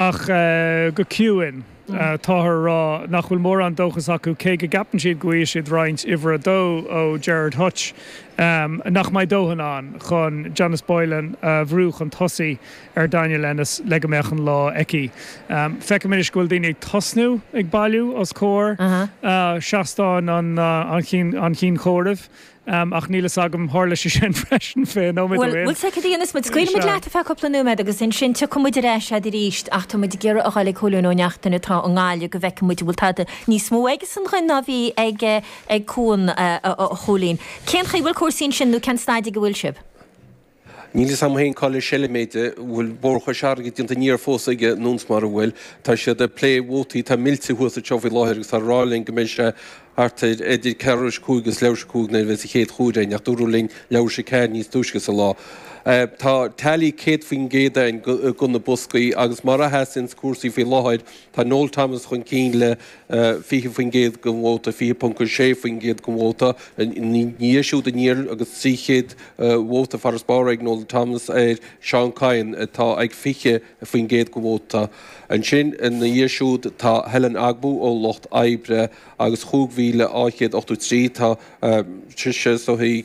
Ach go ciúin, táthar a rá nach bhfuil mórán dóchas acu, cé go gceapann siad go bhfaighidh siad roinnt uimhir a dó ó Gerard Hutch, nach mbeidh dóthain ann chun Janice Boylan a bhrú chun tosaigh ar Daniel Ennis le go mbeadh an lá aici. Feicim anois go bhfuil daoine ag tosnú ag bailiú os comhair seastán an Chinn Chomhairimh. Am, ach níl fhios agam, tharla sé sin freisin fé nóiméad Bhuel, amháin. bhuel, séard a dhéanfas muid, Scaoilfidh muid Sea. leat ar feadh cúpla nóiméad agus ansin tiocfaidh muid ar ais agat arís ach tá muid ag iarraidh a dhul ag Cóilín Ó Neachtain atá i nGaillimh go bhfeicfidh muid an bhfuil tada níos mó aigesan dhúinn ná bhí ag, ag Cuan, a Chóilín. Cén chaoi bhfuil cúrsaí ansin nó cén staid ag a bhfuil sibh? Níl fhios agam féin cá le seilm é de, an bhfuil mórchuid airgid déanta aniar fós aige nó mara bhfuil, tá siad ag plé vótaí atá millte thuas anseo faoi láthair agus táthar ag rá linn go mbeidh sé thart ar idir ceathrú théis a cúig agus leathuair théis a cúig nuair a bheas an chéad chomhaireamh againn ach dúradh linn leathuair théis a ceathair níos túisce sa lá. Tá teailí 100% againn de na boscaí agus mar a sheasanns cúrsaí faoi láthair tá Noel Thomas chun cinn le 20% den vóta, 20.6% den vóta, ina dhiaidh siúd aniar agus 300 vóta farasbarr ag Noel Thomas ar Seán Kyne atá ag 20% den vóta. Ansin ina dhiaidh siúd tá Helen Ogbu ón Lucht Oibre agus 5,283, tá sise sa tríú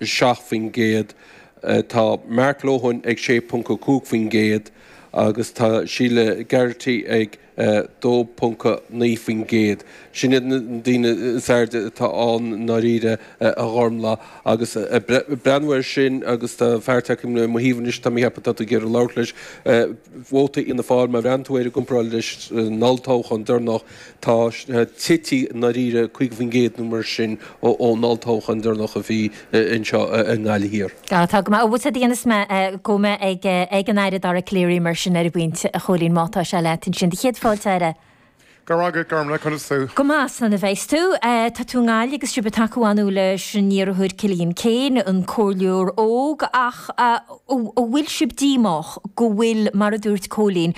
7%, tá Mark Lohan ag 6.5% agus tá Sheila Garrity ag 2.9%. Sin iad na daoine is airde atá ann i ndáiríre, a Ghormfhlaith. Agus ag breathnú air sin, agus tá fear tagtha le mo thaobh anois tá mé ag ceapadh atá tú ag iarraidh labhairt leis, vóta Fhianna Fáil, má bhreathnaíonn tú air i gcomparáid leis an olltoghchán deireanach, Tá sé tite i ndáiríre, 50 faoin gcéad nó mar sin ón olltoghchán deireanach a bhí anseo i nGaillimh Thiar. Tá go maith. Bhuel séard a dhéanfas muid, gabhfaidh muid ag an Aire Dara Calleary mar sin ar an bpointe, a Chóilín, má tá sé leat ansin? Do chéad fáilte, a Aire. Go raibh agat, Gormlaith. Conas tá tú? Go maith. Slán a bheas tú. Tá tú i nGaillimh agus sibh ag tacú ar ndóigh leis an iarrthóir Cillian Keane, an comhairleoir óg, ach an bhfuil sibh díomách go bhfuil, mar a dúirt Cóilín,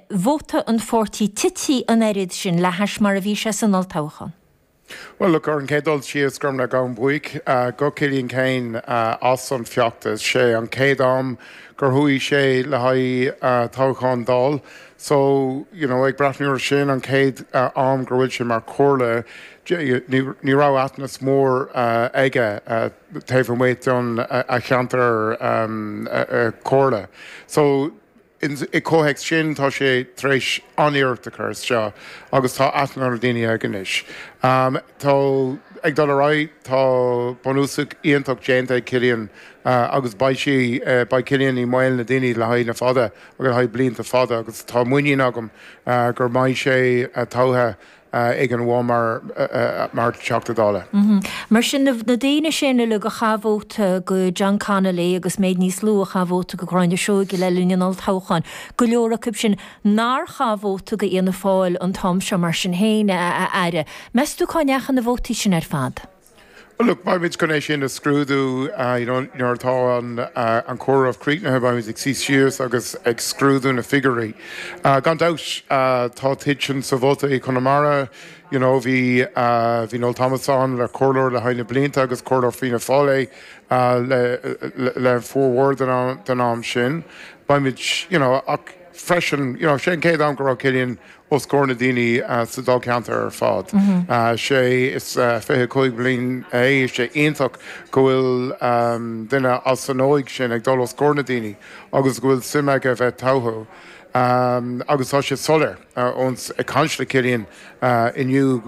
vóta an pháirtí tite an oiread sin le hais mar a bhí sé san olltoghchán. Bhuel, look, ar an chéad dul síos, tá mé an-bhuíoch do Chillian Keane as an bhfeachtas. 'Sé an chéad am gur chuaigh sé le haghaidh toghcháin Dáil so, you know, ag breathnú ar sin, an chéad am gur bhfuil sé mar chomhairle, ní raibh aitheantas mór aige taobh amuigh den a cheantar comhairle. So. I gcomhthéacs sin, tá sé tar éis an-iarracht a chur isteach agus tá aithne ar na daoine aige anois. Tá ag dul ar aghaidh, tá bunús iontach déanta ag Cillian agus beidh sí, beidh Cillian i mbéal na ndaoine le haghaidh na fada, le haghaidh blianta fada agus tá muinín agam gur mbeidh sé tofa ag an bpobal mar Teachta Dála. Mar sin, na daoine sin uile a chaith vóta go John Connolly agus méid níos lú a chaith vóta go Gráinne Seoige le linn an olltoghcháin, go leor acu sin nár chaith vóta go Fhianna Fáil an t-am seo mar sin féin a Aire. Meas tú cá ndeachaigh na vótaí sin ar fad? Well, look, beimid chun é sin a scrúdú nuair atá an comhaireamh críochnaithe, beimid ag suí síos agus ag scrúdú na figiúirí. Gan dabht, tá titim sa vóta i Conamara, you know, bhí Noel Thomas ann mar comhairleoir le haghaidh na blianta agus comhairleoir Fianna Fáil é le formhór den am sin. Beimid, you know, ach freisin, you know, sé an chéad am go raibh Cillian os comhair na daoine sa dáilcheantar ar fad. Sé is fiche a cúig bliain é, sé iontach go bhfuil duine as an óige sin ag dul os comhair na daoine agus go bhfuil suim aige a bheith tofa. Agus tá sé soiléir ón chaint le Cillian inniu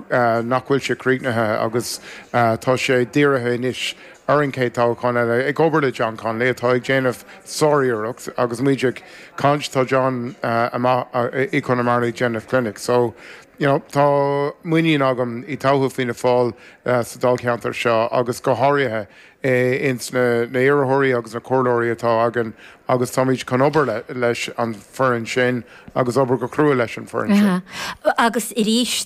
nach bhfuil sé críochnaithe agus tá sé dírithe anois ar an chéad toghchán eile, ag obair le John Connolly atá ag déanamh sár-iarracht agus muid ag. caint Tá John amach i gConamara ag déanamh clinic so you know tá muinín agam i dtodhchaí Fianna Fáil sa dáilcheantar seo agus go háirithe ins na iarrthóirí agus na comhairleoirí atá againn agus táimid chun obair leis an foireann sin agus obair go crua leis an foireann sin. Agus arís.